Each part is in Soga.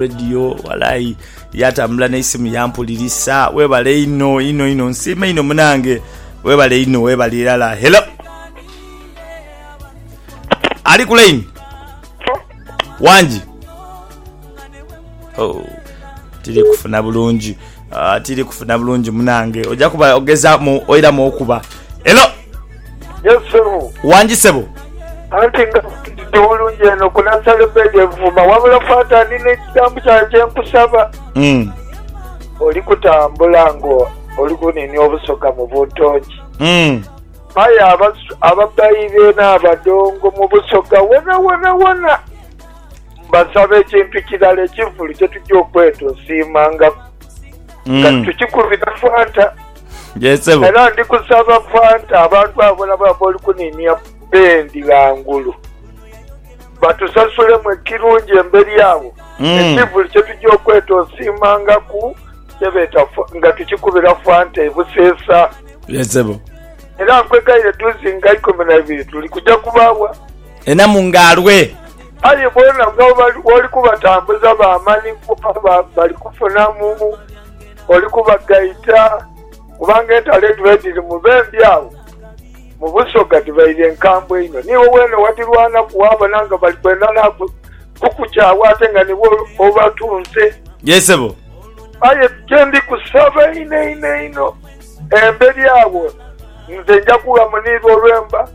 Radio walayi yatambula neisimu yampulirisa webale inho inho inho nsiima inho munange webale inho webale irala hello ali ku line wangi oh, tiri kufuna bulungi Aah tiri kufuna bulungi munange oja kuba ogezamu oiramu okuba. Hello. Yes ssebo. Wangi ssebo. Anti nga ndi bulungi eno ku Nansale Bed e Buvuma wabula Fata ndina ekigambo kyawe kye nkusaba. Umm. Oli kutambula nga oli kuninia obusoga mu buntongi. Umm. Aye ababbayi beene abadongo mu Busoga wonawona wona. Mbasaba ekintu kirala ekivulu kye tugya okweta osiimangaku nga Mm. tukikubira Fanta. Yes, sebo. Era ndi kusaba Fanta abantu abo bona bona b'oli kuniinia bendi ghangulu batusasulemu ekirungi emberi agho Mm. ekivulu kye tugya okweta osiimangaku kye beeta fa- nga tukikubira Fanta e Buseesa. Yes, sebo. Era nkwegaire duuzi nga ikumi na ibiri tuli kugya kubaawa Enamu nga alwee. Aye boona bwoli kubatambuza ba mani kuba bali kufunamu, oli kubagaita, kubanga entalo edhiba edhiri mu bembi agho mu busoga dhibaire nkambwe inho. Niiwe weene wadhirwanaku waabona nga bali kwenda na kukukyagho ate nga niiwe obatunze. Yee sebo. Aye kye ndi kusaba einho einho einho, emberi agho nze nja kughamuniirwa olwemba.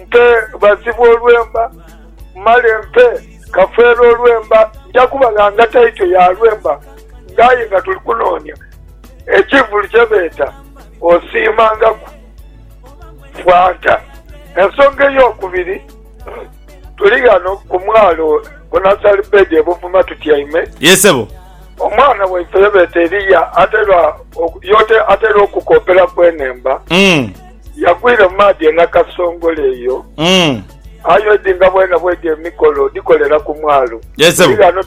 Mpe bazibu olwemba, male mpe Kafeero olwemba. Nja kubalanga taito ya lwemba nga aye nga tuli kunoonia ekivulu kye beeta Osiimangaku Fanta. Ensonga ey'okubiri, tuli ghano ku mwalo ku Nursery Bed e Buvuma tutyaime. Ye sebo. Omwana waife ye beeta Eria atairwa, y'oti atairwa okukooperaku enhemba. Yagwire mu maadhi e Nakasongola eyo. Aye odi nga bwena bwedi emikolo odhikolera ku mwalo. Eri ghano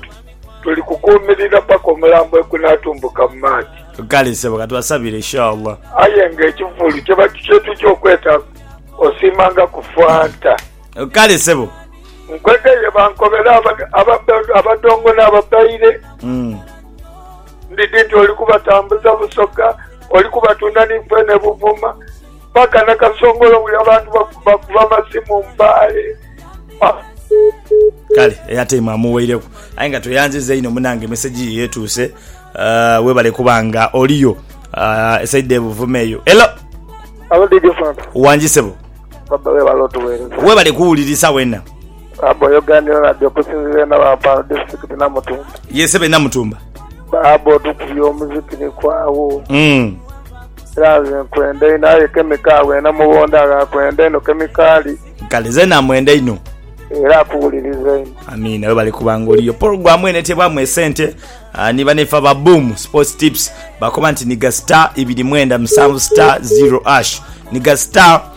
tuli kukuumirira paka omulambo ekunatumbuka mu maadhi. Kale sebo katubasabire inshallah. Aye nga ekivulu kyetuja okweta osiimanga ku fanta. Kale sebo. Nkwegeye bankobere abadongo n'ababaire. Ndidhi nti oli kubatambuza busoga, oli kubatunda ni fene buvuma, mpaka na kasongolo buli abantu bakuba amasimu mbaale. Aah! Kale airtime amuweireku aye nga tweyanziza inho munange message yo etuuse uh, webale kuba nga oliyo uh, esaidha ebuvuma eyo elo Halo DJ Fanta. Wangi sebo. Baba webale otuwereza. Webale kuwulirisa wena. Baaba oyogaanira nade okusinzira e Nawampaano disitirikiti Namutumba. Yee sebo e Namutumba. Baaba otukubye omuziki ni kwaawo. Umm. Era nze nkwenda inho aye Kemiko agho e Namubonda agho akwenda inho Kemikaali. Kale nze namwenda inho. Era akuwuliriza inho. Amiina webale kuba nga oliyo. Pologulamu eno eteebwamu esente ni banaife aba Boom Sports Tips. Bakoba nti nhiga star ibiri mwenda musanvu star zero ash. Nhiga star.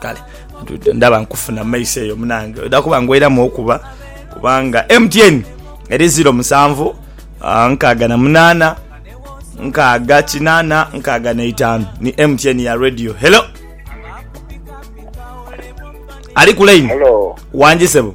kale ndaba nkufuna mumaiso eyo munange oda kuba ngweramu okuba kubanga mtn eri ziro musanvu ah, nkaaga na munaana nkaaga kinaana nkaaga neitaanu ni mtn ya radio hello ali ku line Hello. wangi sebo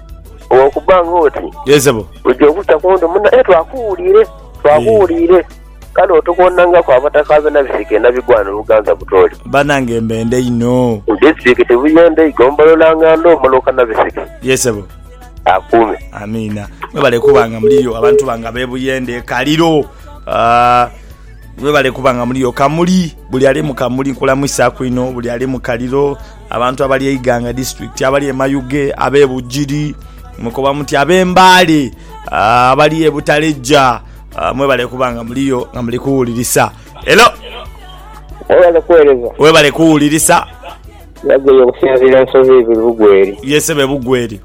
Olw'okuba ng'oti Yee, sebo. oja okukya ku nte muna, aye twakuwuliire, twakuwuliire. Kale otukoonangaku abataka b'e Nabisika e Nabigwano Buganza Butoli. Banange mbendhe inho. Mu disitirikiti Buyende eigombolola Ngandoo Muluka Nabisika. Yee, sebo. Akuume. Amiina. Mwebale kuba nga muliyo abantu bange ab'e Buyende, e Kaliro. Mwebale kuba nga muliyo. Kamuli, buli ali mu Kamuli nkulamuisaaku inho. Buli ali mu Kaliro. Abantu abali e Iganga District, abali e Mayuge, abe Bugiri, mwekoba muti abe Mbale, abali e Butaleja mwebale kuba nga muliyo nga muli kuwulirisa. Hello. Webale kuwereza. Webale kuwulirisa. Yagoye okusinziira ensozi ibiri Bugweri. Ye sebo e Bugweri.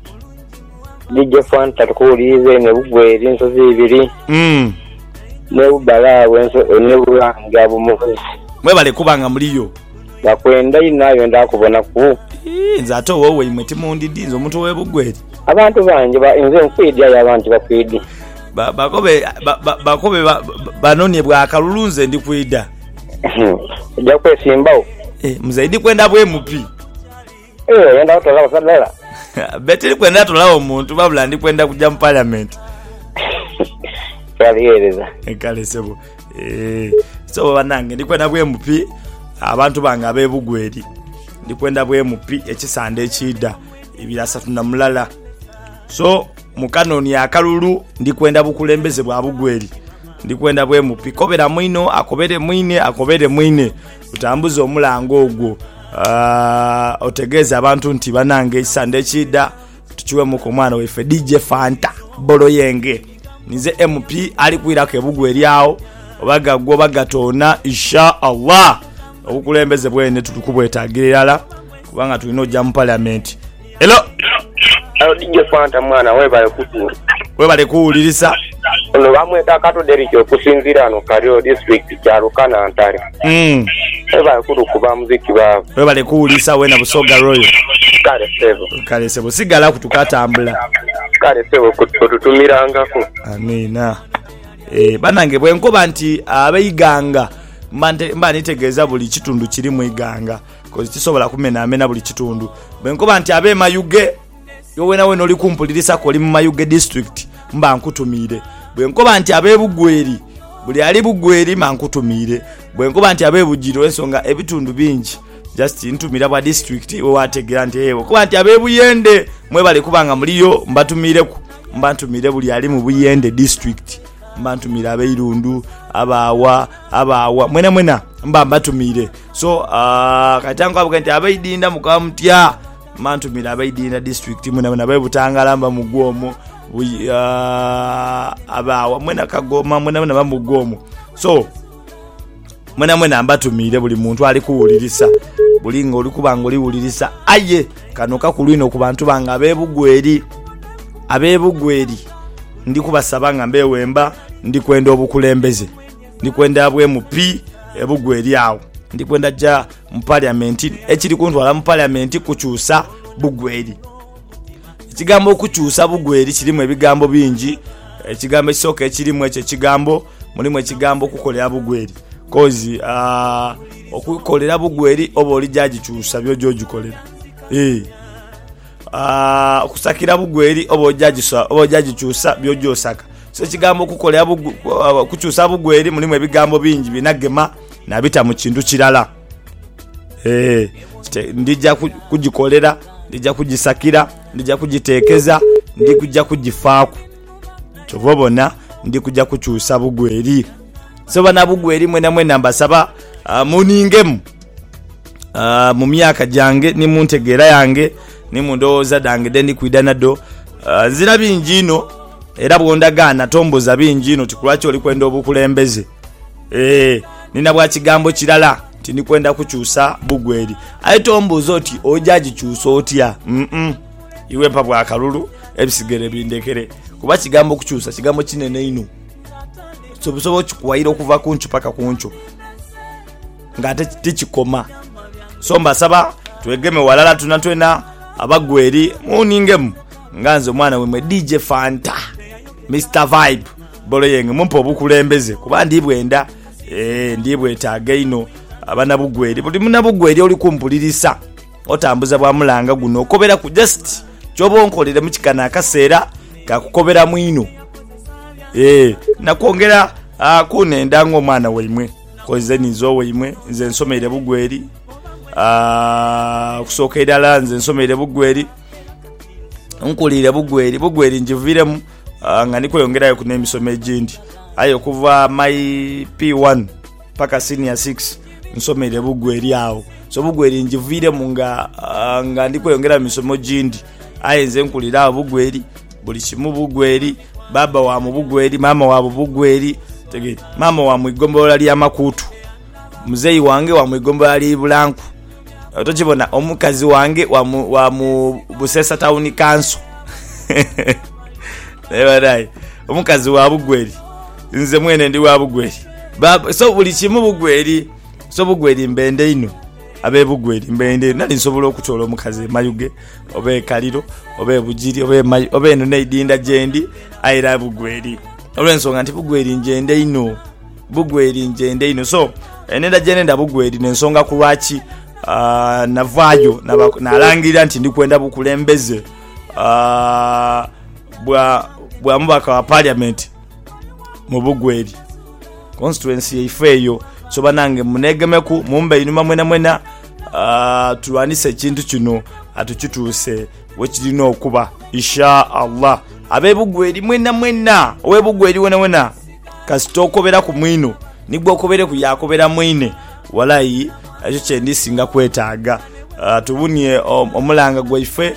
DJ Fanta tukuwuliriza eno e Bugweri ensozi ibiri. Umm. Ne Bubale agho ne Bulange agho mukozi. Mwebale kuba nga muliyo. Bakwenda inho aye benda kubonaku. Ii, nze ate ow'owaimwe timundidi, nze omuntu ow'e Bugweri. Abantu bangi ba, inze nkwidi aye abandi tibakwidi. Ba, bakobe, ba, ba, bakobe ba, banonhye bwa kalulu nze ndi kwida. Oja kwesimbagho. Ee, muzei ndi kwenda bwemupi. Eeh oyenda otolawo sa dala. Be tiri kwenda tolawo muntu wabula ndi kwenda kuja mu parliament. Kyabighereza. Kale sebo eeh so banange ndi kwenda bwe MP abantu bange abe Bugwe eri ndi kwenda bwe MP ekisande ekiidha ibiri asatu na mulala so mu kanonie akalulu ndi kwenda bukulembeze bwa Bugwe eri ndi kwenda bwe MP kobera mwinho akobere mwine akobere mwine. Otambuze omulango ogwo otegeeze abantu nti banange ekisande ekiidha tukiwemuku omwana waife DJ Fanta Boloyenge. Ninze MP ali kwiraku ebugwa eryagho oba gagwa oba gatoona Isha Allah. Obukulembeze bwene tuli kubwetagira irala kubanga tulina oja mu Parliament. Hello DJ Fanta mwana webale kutuusa. Webale kuwulirisa. Ono bamweta Kato Derrick okusinzira ano Kario district Kyaruka Nantale. Mm. Webale kutukuba muziki baaba. Webale kuwulirisa wena Busoga Royal. Kale sebo. Kale sebo sigala ku tukatambula. Kale sebo otutumirangako. Amiina. Eh, banange bwenkoba nti abeiganga mba nitegeeza buli kitundu kirimu iganga. Kozi kisobola kumenamena buli kitundu. Bwe nkoba nti abe Mayuge, iwe wenawena oli kumpulirisaku oli mu Mayuge District, mba nkutumiire. Bwe nkoba nti abe Bugweri, buli ali Bugweri mba nkutumiire. Bwe nkoba nti abe Bugiri olw'ensonga ebitundu bingi just ntumira bwa district iwe waategeera nti hee. Bwe nkoba nti abe Buyende, mwebale kuba nga muliyo, mbatumiireku. Mba ntumiire buli ali mu Buyende District. Mba ntumiire ab'e Irundu, ab'agha, ab'agha, mwenamwena mba mbatumiire. so ah, kati ankwabage nti abaidinda mukaba mutya mantumira abaidinda district mwenamwena bebutangala mba mugwa omwo Buy- ah, abaawa mwena kagoma mwenamwena mba mugwa omwo so mwenamwena mbatumiire buli muntu ali kuwulirisa buli nga oli kuba nga oliwulirisa aye kano kakulu inho ku bantu bange abebugweri abebugweri ndi kubasaba nga mbewemba ndi kwenda obukulembeze Ndi kwenda abwemu pi ebugwa eri agho. Ndi kwenda ja mu parliament. Ekiri kuntwala mu parliament kukyusa bugwa eri. Ekigambo okukyusa bugwa eri kirimu ebigambo bingi. Ekigambo ekisoka ekirimu ekyo ekigambo, mulimu ekigambo okukolera bugwa eri. Kozi aah okukolera bugwa eri oba oli ja jikyusa byoja ojikolera eeh. Okusakira bugwe eri oba oja gikyusa by'oja osaka. So ekigambo okukolera bugwe, okukyusa bugwe eri mulimu ebigambo bingi birina gema nabita mu kintu kirala. Ee, ndija kugikolera, ndija kugisakira, ndija kugitekeza, ndija kugifaaku. Kyova obona ndi kuja kukyusa bugwe eri. So banabugwe eri mwenamwena mbasaba muningemu. ah, mu myaka gyange ni mu ntegeera yange ni mu ndowooza dhange dhe ndi kwidha nadho. Ah, nzira bingi inho era bw'ondagaana tombuuza bingi inho ti ku lwaki oli kwenda obukulembeze. Ee, ni na bwa kigambo kirala nti ndi kwenda kukyusa bugweri. Aye tombuuza oti oja gikyusa otya? Mm-mm. Iwe mpa bwa kalulu ebisigere bindhekere. Kuba kigambo kukyusa kigambo kinene inho. Osobola okikuwaira okuva ku nkyo paka ku nkyo. Nga ate tikikoma so mbasaba twegeme walala twena twena abagwa eri muningemu nga nze omwana wemwe DJ Fanta Mister Vibe Boloyeng mumpe obukulembeze kuba ndibwenda eeh ndibwetaga einho abanabugweri buli munabugweri oli kumpulirisa otambuza bwa mulanga guno okoberaku just kyoba onkolere mukikano akaseera kakukoberamu inho eeh nakwongera kunenda nga omwana waimwe. Ku nze ninze owaimwe, nze nsomeire bugweri, okusooka irala nze nsomeire bugweri, nkuliire bugweri, bugweri njiviremu nga ndi kweyongerayoku n'emisomo egindi. Aye okuva my P1 paka Senior Six nsomeire bugweri agho. So bugweri njiviremu nga ndi kweyongerayo mu misomo gindi. Aye nze nkulira agho bugweri, buli kimu bugweri. Bbaabba wa mu Bugweri, maama wa Bugweri, maama wa mu igombolola lya Makuutu. Muzei wange wa mu igombolola lya Ibulanku. Tokibona? Omukazi wange wa mu, wa mu Buseesa Tawuni Kanso. Naye banaye, omukazi wa Bugweri. Nze mwene ndi wa Bugweri. Bbaabba, so buli kimu Bugweri. So Bugweri mbenda inho. Ab'e Bugweri mbenda inho. Nali nsobola okutoola omukazi e Mayuge. Oba e Kaliro, oba e Bugiri, oba e Mayu, oba eno n'eidinda gyendi, aye era Bugweri. Olw'ensonga nti Bugweri ngyenda inho. Bugweri ngyenda inho. So, enhenda gye nenda Bugweri n'ensonga ku lwaki navaayo nalangirira nti ndi kwenda bukulembeze bwa mubaka wa Parliament mu Bugweri. Constituency yaife eyo so banange munegemeku mumbe einhuma mwena mwena tulwanise ekintu kino tukituuse wekirina okuba Isha Allah. Abe Bugweri mwena mwena owe Bugweri wona wona kasita okoberaku mwino ni gwokobeireku yakobera mwine walai ekyo kyendi singa kwetaaga. Tuwunie omulanga gwaife.